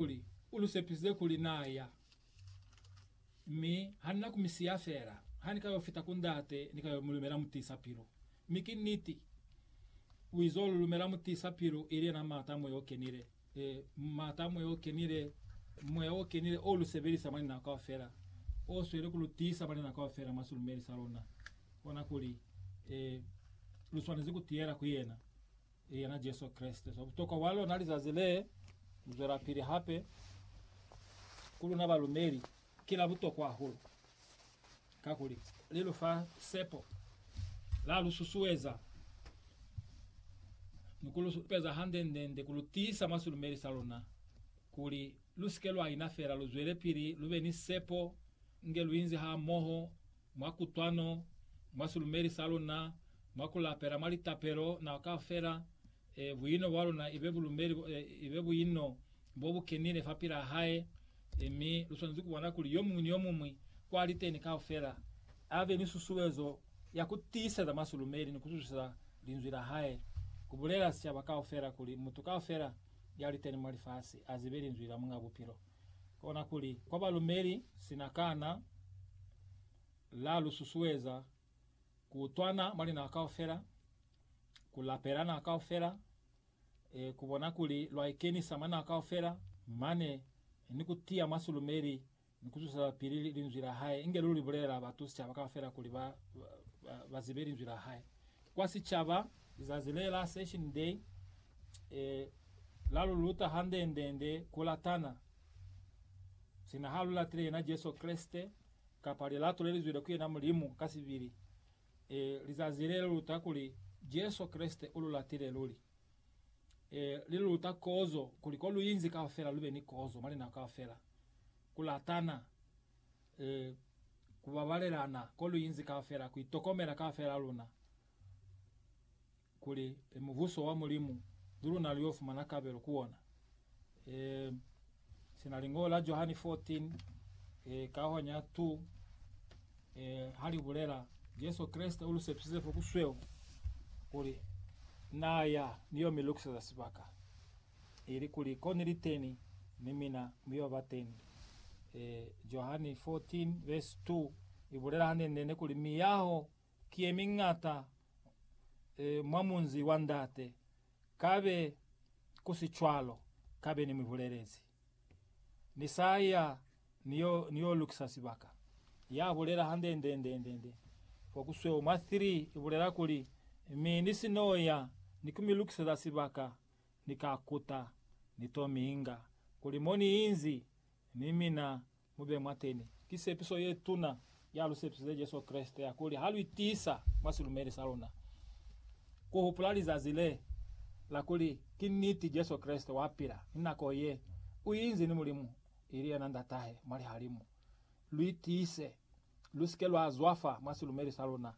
Kuli u lu sepisize kuli na ya, mi ha ni na ku mi siya fela. Ha ni ka yo fita ku Ndate, ni ka yo mu lumela Mutiisa-pilu. Mi ki niti, u izo lu lumela Mutiisa-pilu, ili yena Maata a Moya o Kenile. E, Maata a Moya o Kenile, Moya o Kenile o lu sebelisa mwa linako kaufela, o sweli ku lu tiisa mwa linako kaufela mwa silumeli sa luna. Kona kuli, e, lu swanezi ku tiyela ku Yena. ili yena Jesu Kreste. So butokwa bwa lona lizazi le, ku zwelapili hape ku luna balumeli ki la butokwa hahulu, kakuli li lu fa sepo, la lu susueza, ni ku lu supeza hande-nde-nde ku lu tiisa mwa silumeli sa luna, kuli lu si ke lwa ina fela, lu zwelepili lu be ni sepo nge lu inzi hamoho. mwa kutwano, mwa silumeli sa luna, mwa ku lapela, mwa litapelo, nako kaufela, e, buino bwa luna ibe bulumeli, e, ibe buino bo bu kenile fa pilaa Hae. E, mi lu swanezi ku bona kuli yo muñwi ni yo muñwi kwa li teni kaufela a be ni susuezo ya ku tiiseza mwa silumeli ni ku zwisisa Linzwi la Hae, ku bulela sicaba kaufela kuli mutu kaufela ya li teni mwa lifasi a zibe Linzwi la Muñ'a Bupilo. kona kuli, kwa balumeli, sina kana la lu susueza ku utwana mwa linaka kaufela, ku lapela naka kaufela, e, ku bona kuli lwa ikenisa mwa naka kaufela, mane ni ku tiya mwa silumeli ni ku zuselapili Linzwi la Hae, inge lu li bulelela batu, sicaba kaufela, kuli ba, ba, ba, ba zibe Linzwi la Hae. Kwa sicaba, lizazi le la Session Day e la lu luta hande-nde-nde ku latana. Sina ha lu latile yena Jesu Kreste, kapa lilato le li zwile ku yena Mulimu ka sibili, e lizazi le li luta kuli Jesu Kreste u lu latile luli. E li lu luta kozo, kuli ko lu inzi kaufela lu be ni kozo mwa linako kaufela. Ku latana. e, ku babalelana ko lu inzi kaufela, ku itokomela kaufela luna, kuli e, Mubuso wa Mulimu ni luna lu yo fumana kabelo ku ona. E, sina Lingoho la Johani 14, e, kaho nya 2, e, ha li bulela, Jesu Kreste u lu sepisize fo ku sweu, kuli Na ya ni yo mi lukiseza sibaka. ili kuli ko niliteni, ni mina mu yo ba teni. E, Johani 14 vesi 2 ibulela hanene-nene kuli miyaho ki ye miñata e, mwa munzi wa Ndate. Kabe ku si cwalo, kabe ni mi bulelezi. Ni sa ya ni yo, ni yo lukisa sibaka. Ya bulela handendendendende kwa ku sweo mwa 3 ibulela kuli, Mi ni si no ya ni ku mi lukiseza sibaka, ni ka kuta, ni to mi inga kuli mo ni inzi, ni mina mu be mwateni. Ki sepiso ye tuna ya lu sepisize Jesu Kreste ya kuli ha lu itiisa mwa silumeli sa luna, ku hupula lizazi le la kuli ki niti Jesu Kreste wa pila, ni nako ye u inzi ni Mulimu, ili yena Ndatahe mwa lihalimu. Lu itiise, lu si ke lwa zwafa mwa silumeli sa luna,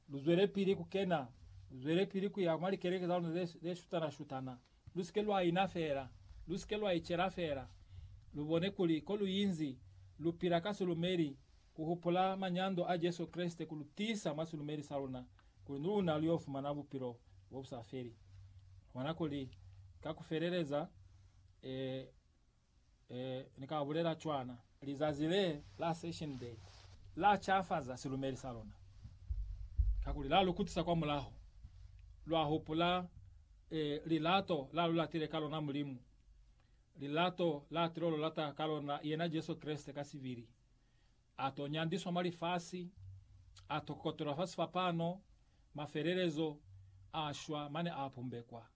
Lu zwelepili ku kena, lu zwelepili ku ya mwa likeleke za luna ze, ze shutana-shutana. Lu si ke lwa ina fela. Lu si ke lwa icela fela. Lu bone kuli ko lu inzi, lu pila ka silumeli, ku hupula manyando a Jesu Kreste ku lu tiisa mwa silumeli sa luna, kuli ni luna lu yo fumana bupilo bo bu sa feli. Mwa nako li ka ku feleleza, ee, Ee, Ni ka bulela cwana. Lizazi le la Ascension Day la cafaza silumeli sa luna, kakuli la lu kutisa kwa mulaho. Lwa hupula, ee, lilato la lu latile ka lona Mulimu, lilato la tilo lu lata ka lona yena Jesu Kreste ka sibili. A to nyandiswa mwa lifasi, a to kokotelwa fa sifapano, mafelelezo, a shwa, mane a pumbekwa.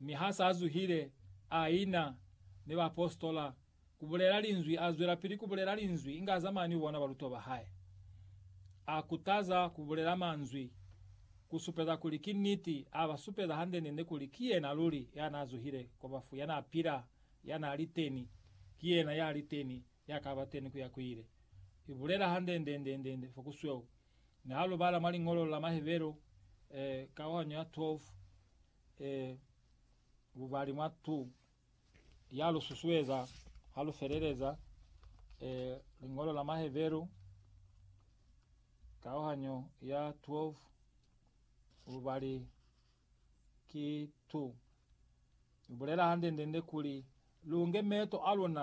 Mi ha s'a zuhile, a ina ni baapositola ku bulela linzwi. A zwelapili ku bulela linzwi inge a zamaya ni bona balutwa ba hae. A kutaza ku bulela manzwi ku supeza kuli ki niti, a ba supeza hande-nde-nde kuli ki yena luli ya n'a zuhile kwa bafu, ya n'a pila, ya n'a li teni, ki yena ya li teni, ya ka ba teni ku ya ku ile. I bulela hande-nde-nde-nde fo ku sweu. Mi ha lu bala mwa Liñolo la Mahebero, eh, kauhanyo ya 12, E, bubali mwa tu ya lu susueza ha lu feleleza e, Liñolo la Maheberu, kauhanyo ya 12, bubali ki tu. Lu bulela hande-ndende kuli lu nge meeto a luna